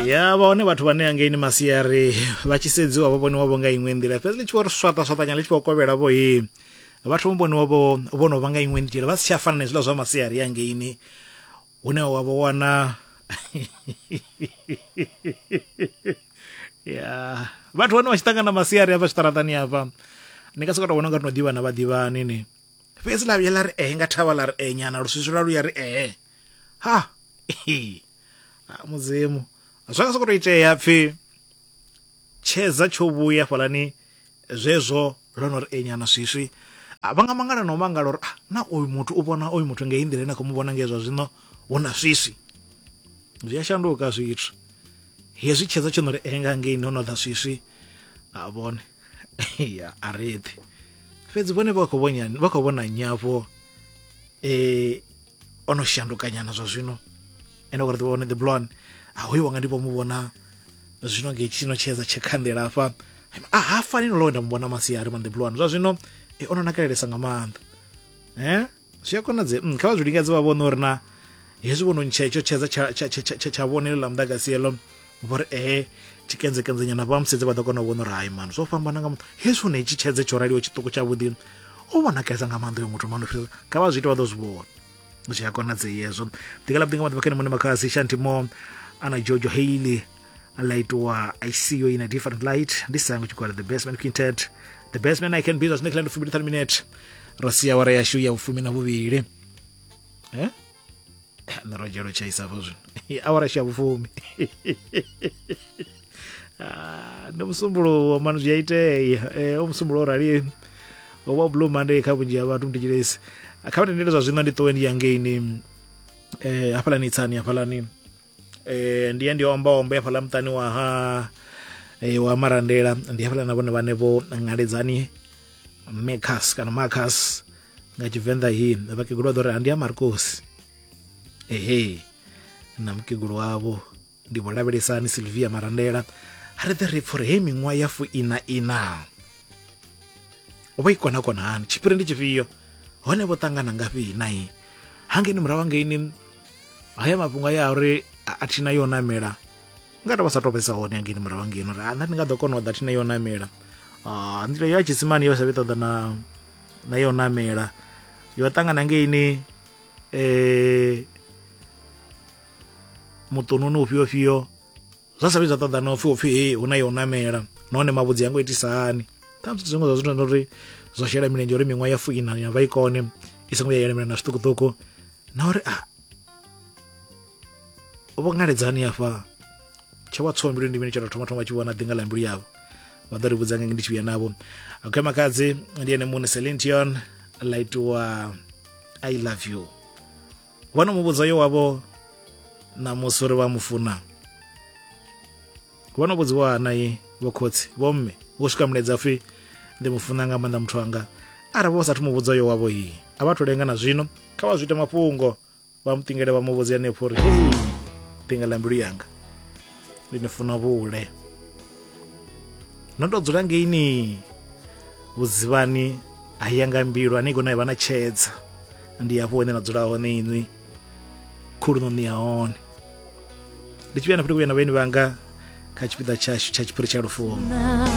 ya vha hone vhathu vhane angeini masiari vha tshi sedziwa vha vhoniwa vho nga iṅwe nḓila fhedzi ḽi tshi vho ri swaṱa swaṱanya ḽi tshi vho kovhela vho he vhathu vho vhoniwa vho vho no vha nga iṅwe nḓila vha si tsha fana na hezwiḽa zwa masiari angeini hune wa vho wana ya vhathu vhane vha tshi ṱangana masiari hafha zwiṱaraṱani hafha ni ka soka to vhona nga ri no ḓivhana vha ḓivhani ni fhedzi ḽa vhuya ḽa ri ee nga thavha ḽa ri ee nyana luswiswi lwa luya ri ee ha mudzimu zwa nga sokoto itea pfi tshedza tsho vhuya fhalani zwezwo ḽo no ri enyana swiswi vha nga mangala na u mangala uri ah, na uyu muthu u vhona uyu muthu ngei nḓila ine khou mu vhona ngei zwa zwino hu na swiswi zwi a shanduka zwithu hezwi tshedza tsho no ri enga ngei no no ḓa swiswi a vhone ya a reḓi fhedzi vhone vha khou vhona nyafho um o no shandukanyana zwa zwino ene gore ḓivha one the blon a hoyo wanga ndi vho mu vhona zwino nge tshino tshedza tshekhandela afha a ha fani no nda mu vhona masiari man the blon zwa zwino e ono nakelelesa nga maanḓa eh zwi a konadze mm, kha vha zwi lingedze vha vhone uri na hezwi vhono ntsha itsho tshedza tsha tsha tsha tsha tsha vhone ḽa muḓagasi eḽo vho ri ee eh, tshikenzekenzanyana vha musedze vha ḓo kona u vhona uri hai mani zwo fhambana nga muthu hezwi hune itshi tshedze tsho raliho tshiṱuku tshavhuḓi o vhonakesa nga maanḓa yo muthu mano fhirisa kha vha zwi ite vha ḓo zwi vhona zwi a konadzei hezwo ḓikala vhuḓi nga maḓuvha khene mune makhasi shanti mo ana jojo hailey la itiwa i see you in a different light ndi sango tshikwala the best man quintet the best man i can be zwine khala ndi fumi ndi thani minute ro sia wara yashu ya vhufumi na vhuvhili eh? nirojela u tshaisa hafho zwino awara sha vhufumi ah, ndi musumbuluwo mani zwi a itea eh, omusumbulo o rali wa blue monday kha vhunzhi ha vhathu mutitshilesi kha vhatendele zwa zwino ndi ṱowe ndi yangeini um eh, hafhalani itsani hafhalani eh ndiye ndi omba omba hafhaḽa muṱani wa ha eh, wa marandela ndi hafhaḽa na vhone vhane vho ngaledzani mecas kana macas nga tshivenḓa hi vhakegulu vha ḓo ri andi a markosi ehe na mukegulu wavho ndi vho lavhelesani silvia marandela ha ri ḓe ri pfha uri hei miṅwaha ya fuina ina vho i kona kona hani tshiphiri ndi tshifhio hone vho ṱangana ngafhi na i hangeni murahu hangeini haya mafhungo aya a uri a thina yo namela nga tou vha sa tou vhesa hone hangeini murahu hangeini uri nṋe ndi nga ḓo kona u ḓa thina yo namela ah, nḓila yo ya tshisimani yo sa vhi ṱoḓa na na yo namela yo ṱangana ngeini um muṱununi ufhio fhio zwa sa vhi zwa ṱoḓa na upfhi upfhi hei hu na yo namela nahone mavhudzi ya ngo itisa hani ṱhamusi zwithu zwiṅwe zwa zwithu uri zwo shela milenzhe uri miṅwaha ya fuina ya vha i kone i songo ya yelemela na zwiṱukuṱuku na uri a ah, vho ngaledzani afha tsha wa tsho mbilu ndi mini tsha tou thoma thoma tshi vhona ḓinga ḽa mbilu yavho vha ḓo ri vhudza ngenge ndi tshi vhuya navho okay makadzi ndi ene muṋe selintion ḽa itiwa i love you vha no mu vhudza yo wavho ṋamusi uri vha mu funa vho no vhudziwa hanai vho khotsi vho mme vho swika muleza pfhi ndi mu funa nga maanḓa muthu anga arali vho sathu mu vhudza yo wavho iyi a vha thu lenga na zwino kha vha zwi ite mafhungo vha mu ṱingele vha mu vhudze hanefho uri hei ṱinga ḽa mbilu yanga ndi ni funa vhule no to dzula ngeini vhudzivhani a ya nga mbilu ane kona vha na tshedza ndi hafho hune na dzula hone inwi khulunoni ya hone ndi tshi vhuya na fhele kuyana vhaeni vhanga kha tshipiḓa tshashu tsha tshiphiri tsha lufuno